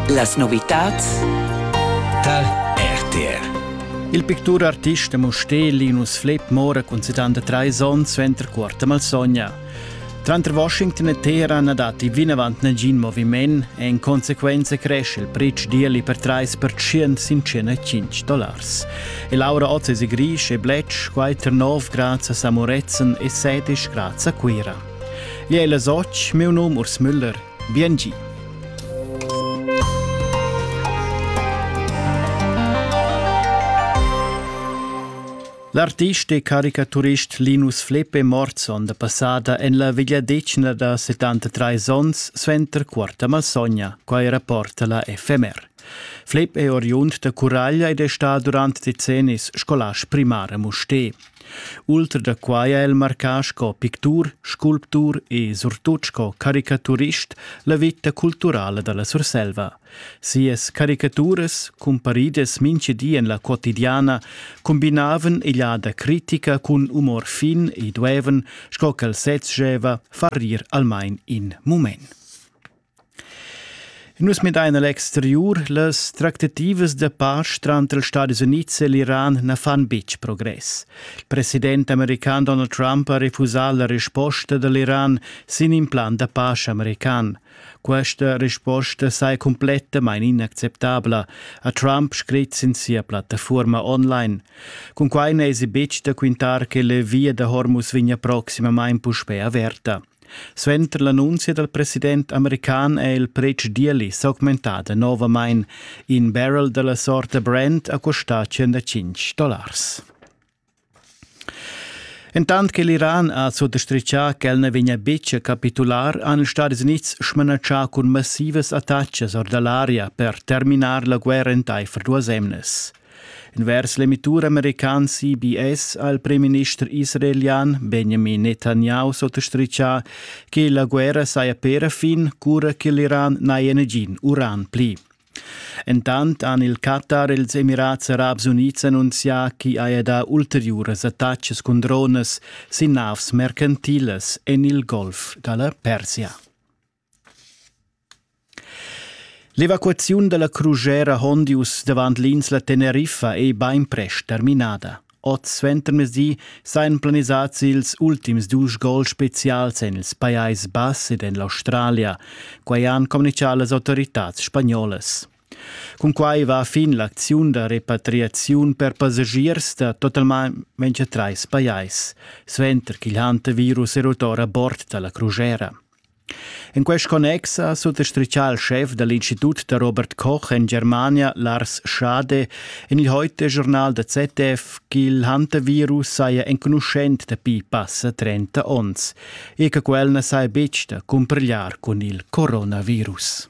Las novitads Tal RTR Il picturartist Mosté Linus Flepp mora cun 73 onns suenter quarta malsogna. Tranter Washington e Teheran datti vinavant nagin moviment e in consequenza cresce il pretsch d'ieli per 3% sin 105 dollars. E Laura Oz è Grisch e Bletsch, quai tar 9 grads a Samoretzen e 7 grads a Cuira. Jeu la soc, miu num Urs Müller, bien gi. L'artist e caricaturist Linus Fleppe Morson, da passada en la vegliadetgna da 73 onns, suenter quarta malsogna, quai rapporta la FMR. Flepp è oriund da Curaglia ed è stà durant decennis scolast primar a Musté. Ultra da quai ha el marcà sco pictur, sculptur e surtut sco caricaturist la veta culturala da la Surselva. Sias caricaturas, cumparidas mintga di en la quotidiana, combinavan egliada critica cun umor fin e duevan, sco ch'el sez scheva, far rir almain in mument. Nus midain a l'exteriur, las tractativas da pace tranter els Stadis Unids e l'Iran na fan betg progress. Il president american Donald Trump ha refusà la risposta da l'Iran sin in plan da pace american. Questa risposta saja cumplettamain inacceptabla, ha Trump scrit sin sia plattafuorma online. Cun quai n'èsi betg da quintar che la via da Hormuz vegnia proximamain puspè averta. Suenter l'annunzia dal president american è il pretsch d'ieli s'augmentà danovamain. In barrel da la sorta Brent ha custà 105 dollars. Entant che l'Iran ha sottastritgà ch'el na vegnia betg a capitular, han ils Stadis Unids smanatschà cun massivas attacas or da l'aria per terminar la guerra entaifer duas emnas. Envers l'emitur american CBS ha il premierminister israelian Benjamin Netanyahu sottostritgà che la guerra saja per fin cura che l'Iran n'haja nagin uran pli. Entant han il Qatar e ils Emirats Arabs Unids annunzià ch'i haja dà ulteriuras attacas cun dronas sin navs mercantilas en il Golf da la Persia. L'evacuaziun dalla Crugera Hondius davant l'insla Teneriffa ei beinprest terminada. Oz suentermezdi seien planisats ils ultims dus gol specials en ils Pajais Bass ed en l'Australia. Quei han communicau las autoritads spagnolas. Cunquai va fin l'acziun da repatriaziun per passagiers da totalmain trais pajais, suenter ch'il hantavirus è rut ora bord dalla crugera. En quest connex ha suttostrichà il schef da l'Institut da Robert Koch en Germania Lars Schade en il heute Journal da ZDF ch'il hantavirus saja enconuschent dapi passa 30 onns e che quel na saja betg da cumpigliar cun il coronavirus.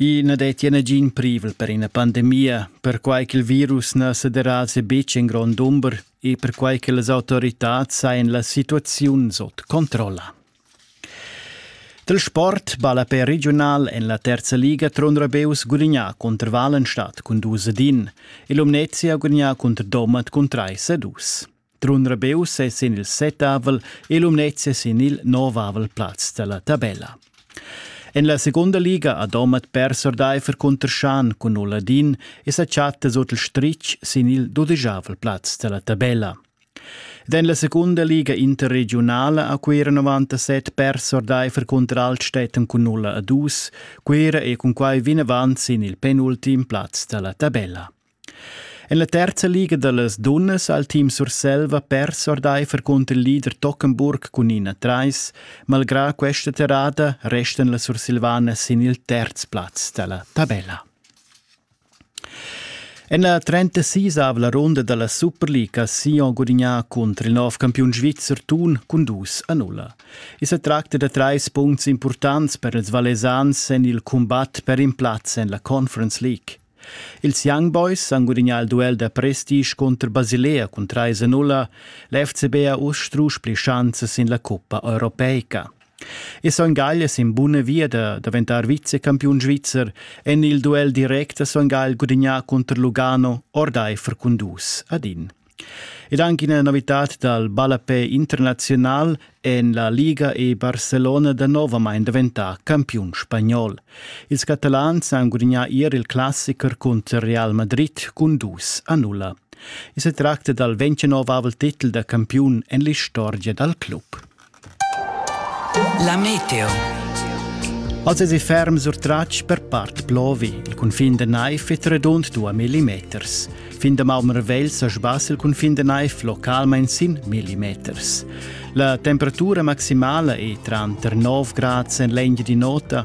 I na dettia nagin privel per ina pandemia, perquai ch'il virus na sederasa betg en grond dumber e perquai che las autoritads hajan la situaziun sut controlla. Dal sport ballapè regiunal en la terza liga Trun Rabeus gulignà cunter Walenstadt cun dus ad in e Lumnezia gulignà cunter Domat cun trais a dus. Trun Rebeus è sin il settavel e Lumnezia sin il novavel plaz dalla tabella. En la segunda liga ha Domat pers ordaifer cunter Schan cun Oladin e sa chatta sut il stritg sin il dudegiavel plaz dalla tabella. Ed en la secunda liga interregiunala ha Cuira 97 pers ordaifer cunter Altstätten cun 0 a 2, Cuira è cun quai vinavant sin il penultim plaz dalla tabella. En la terza liga da las dunnas ha il team Surselva pers ordaifer cunter il leader Tockenburg cun ina trais. Malgrà questa terrada restan las Sursilvanas sin il terz plaz da la tabella. En la 36 la ronda da la Superliga ha Sion gudignà cunter il nov campiun svizzer Thun cun 2-0. I sa tracta da trais puncts importants per ils Valesans en il cumbat per in plaz en la Conference League. Ils Young Boys han gudagnà il duel da prestige cunter Basilea cun trais a nulla. L'FCB ha uss strusch pli schanzas sin la cuppa europeica. E Son Gagl è sin buna via da daventar vicecampiun svizzer. En il duel direct ha Son Gagl gudagnà cunter Lugano ordaifer cun dus ad in. Ed anche ina novità dal ballapè internazional en la Liga è Barcelona danovamain daventà campiun spagnol. Ils catalans han gudagnà ier il classicher cunter Real Madrid cun dus a nulla. I sa tracta dal ventgenovavel titel da campiun en l'istorgia dal club. La meteo. Els esi ferm surtratg per part plovi. Il cunfin de Naif è redund 2 millimeters. Fin de Malmervel sa sbas il cunfin de Naif localmain sin millimeters. La temperatura maximala è tranter 9 grads en l'engine di nota,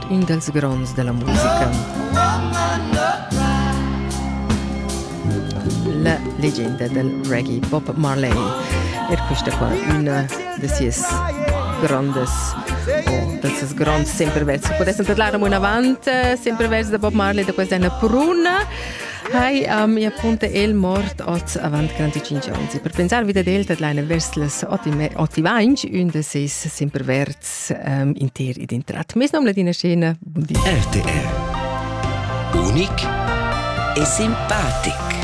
in dals gronds dalla musica. La legenda del reggae Bob Marley. Er questa qua una de sias grandes o dal ses gronds sempre versi. Potessem tadlar un avant, sempre versi da Bob Marley da questa pruna. Hai um, e appunto el mort oz avant 25 anni. Per pensarvi da del tadlaina vers las 8 e 21 un de ses sempre vert ähm, inter id intrat. Mes nom ladina scena, buon di. RTR. Unic e simpatic.